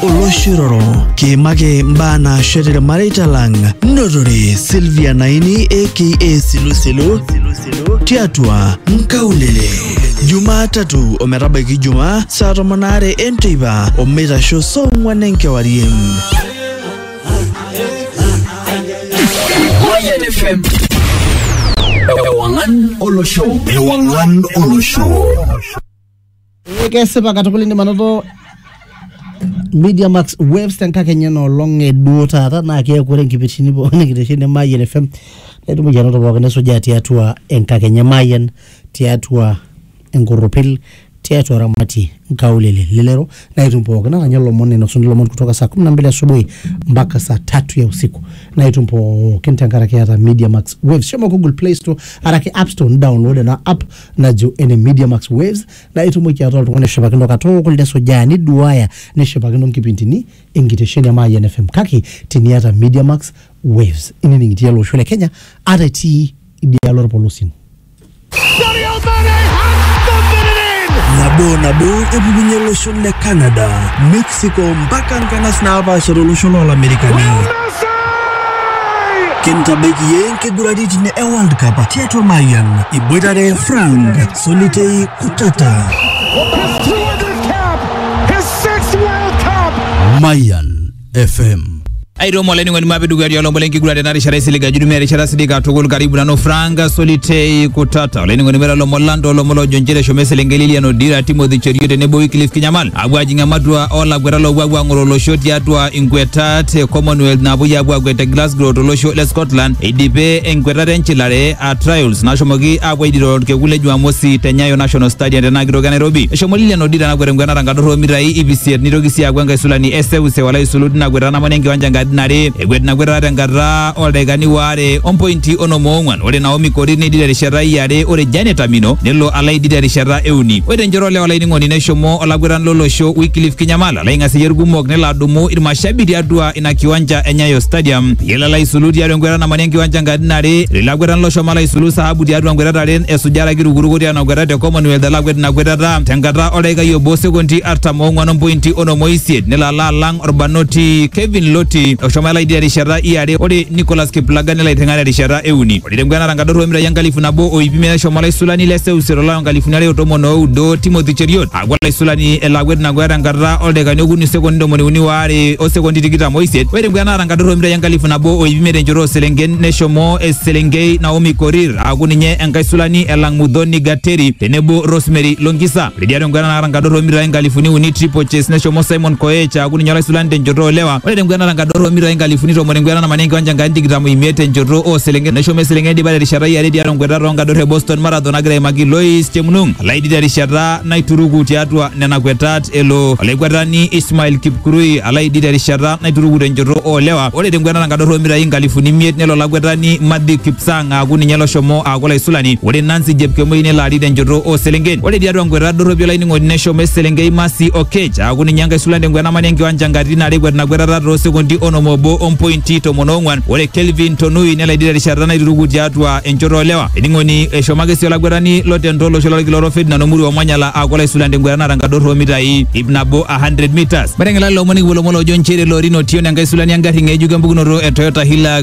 olosho iroro kiimaki mbaa naashet irmareita lang notore Sylvia Naini aka Silusilu tiatua Nkaulele Jumatatu ometabaiki Jumaa saa tomon aare enteipa omeitasho saa ong'wan enkewarie. Mayan FM. Ewangan Olosho. Ewangan Olosho. Ee kesipa katukul indim anoto Media Max Waves tenkakenya enoolong e duo taata naa keeku ore nkipindini pooki nikitesheni Mayian FM naitumoki anoto pooki nisujaa tiatua enkakenya Mayian tiatua enkorropil tiatua Ramati nkaulele lelero naitum pooki naranya lomon nainosuni lomon kutoka saa kumi na mbili asubuhi mpaka saa tatu ya usiku naitum pookin tenkaraki eeta Media Max Waves shomo Google Play Store araki App Store nidownload ena app najo ene Media Max Waves na itumoki ataa oltung'ani oshipakino katukul nesujaa niduaya neshipakino nkipindini enkitesheni e Mayian FM kake teniata Media Max Waves inining itii ele osho le Kenya ata itii idialo orpolosien Sadio Mane has thumped it in! nabo nabo epukunye olosho le Canada Mexico Mexico mpaka nkanas naapaasha tolosho loolamerikani. Kintabaiki iyie nkiguraritin e World Cup tiatua Mayian iboitare Frank Solitei Kutata. Mayan FM aitomo olainining'oni mapi dukuya tialo lombo lenkiguran tena rishata isilig ajo itumia erishata sidai katukul karibu nanu frank solitei kutata olainining'oni mera lomon lang toolomon loojo nchere eshomo eselenkei lilian odira timothy cherio tenebo wyclif kinyamal apuo ajing ematua olakweta loopuo apuo ang'oro olosho tiatua inkwetat e commonwealth naapuoi apuo akwet te glasgow tolosho le scotland eidipe enkwetata enchilare a trials nashomoki apuo aidiro orkekun le jumamosi te nyayo national stadium tenaa kitoki e nairobi eshomo lilian odira nakwet enkwetata atorro mitai ip isiet nitoki sii aaku enkaisulani eseuseu alo aisulu tina kwetata namana enkiwanja inkatitin are ekwet ina kwetata tenkata oldaikani waare ompointi onom oong'wan ore Naomi Korir neidid terishata iare ore Janet Amino nelo alo aidid terishata euni ore tenchoto olewa olainining'oni neshomo olakwetani lolosho Wycliffe Kinyamala alo aing'aseyie irkumok nelo adumu irmashabi tiatua ina kiwanja e Nyayo Stadium peyie elo alo aisulu tiatua enkwetata namana enkiwanja inkatitin are ore ilo akwetani loshomo alo aisulu sahabu tiatua nkwetata are esujare ake irukuruko tiatua ina kwetata e Commonwealth alo akwet ina kwetata tenkata oldaikai obo sekondi artam oong'wan ompointi onom oisiet nelo alo alang orbanoti Kevin Loti oshomo elaidi terishata iare ore Nicholas Kiplagat nelo aiteng'ena terishata euni ore tenguana nankadorro omitai enkalifu nabo o iip imiet neshomo olaisulani le seuseu tolari lonkalifuni are o tomon oudo Timothy Cheriot aaku olaisulani elo akwet ina kweta tenkata oldaikani okuni sekondi ntomoni uni waare o sekondi tikitam oisiet ore tenguana naata nkadorro omitai enkalifu nabo o iip imiet enchoto ooselenken neshomo eselenkei Naomi Korir aaku ninye enkaisulani elang Muthoni Gateri tenebo Rosemary Longisa. Lidia tenguena naata nkadorro omitai nkalifuni uni triple chase neshomo Simon Koech aaku ninye olaisulani tenchoto olewa. Ore tenguena naata nkadorro omitai nkalifuni tomon enguena namanya enkiwanja Enkai tikitam oimiet tenchoto oo selenken neshomo eselenken eidipa terishata iare tiatua nkuetat oo nkadorro e Boston Marathon nagira aimaki Lois Chemnung Alaidi terishata naituruku tiatua nena kuetat elo olaikuetani Ismail Kipkurui Alaidi terishata naituruku tenchoto oo lewa. Ore tenguena naata nkadorro omitai nkalifuni imiet nelo olakuetani Matthew Kipsang Ololang aaku ninye loshomo aaku olaisulani. Ore Nancy Jepkemoi nelo arik tenchoto oo selenken. Ore tiatua nkweta dorropi olainining'oni neshomo eselenkei Mercy Oketch aaku ninye enkaisulani te nkwena mani enkiwanja nkatitin are ekwet ina kwetata too sekondi onom obo o mpointi tomon oong'wan. Ore Kelvin Tonui nelo aidip terishata naituruku tiatua enchoto oo lewa. Ainining'oni, eshomo ake sii olakwetani lo tento olosho lolkila orok Ferdinand Omuru Omanyala aaku olaisulani te nkwetata naata nkadorro oo mitai iip nabo a 100 metres. Mateng'ela lelo omon nikipuo lomon loojo nchere Lorin Otieno enkaisulani engarri ng'ejuk empukunoto e Toyota Hilux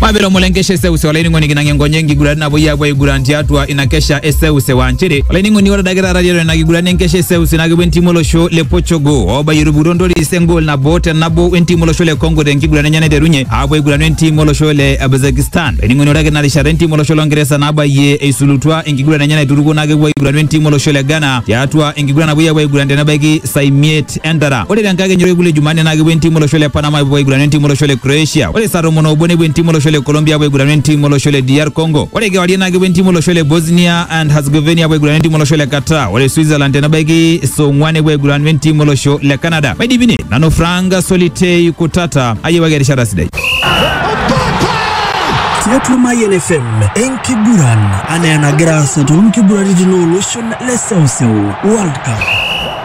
mwabera omulengeshia eseuse olainining'oni kinang'a enkonye enkiguran napuoi aapuo aiguran tiatua ina kesha eseuse waa nchere olainining'oni ore adake taata tiatua ina kiguran enkesha eseuse naa kepuo entimu olosho le Portugal oobayie etupukutuo ntoris engol nabo te nabo wentimu olosho le Congo tenkiguran enye naiterunye aapuo aiguranu entimu olosho le Kazakhstan olainining'oni ore ake ina rishata entimu olosho lo Ngeresa nabayie eisulutua enkiguran enye naiturukuo naa kepuo aiguranu entimu olosho le Ghana tiatua enkiguran napuoi aapuo aiguran tenebaiki saa imiet East Entera. Ore tenkakenya orkekun le Jumanne naa kepuo entiim olosho le Panama apuo aigurana entiim olosho le Croatia. Ore saa tomon oobo nepuo entiim olosho le Colombia apuo aigurana entiim olosho le DR Congo. Ore kewarie naa kepuo entiim olosho le Bosnia and Herzegovina apuo aigurana entiim olosho le Qatar. Ore Switzerland tenebaiki saa ong'uan nepuo aigurana entiim olosho le Canada. Maidipi ine, nanu Frank Solitei Kutata ayiewaki erishata sidai. tiatua Mayian FM enkiguran anaa enagira aasa toonkiguraritin ooloshon le seuseu World Cup.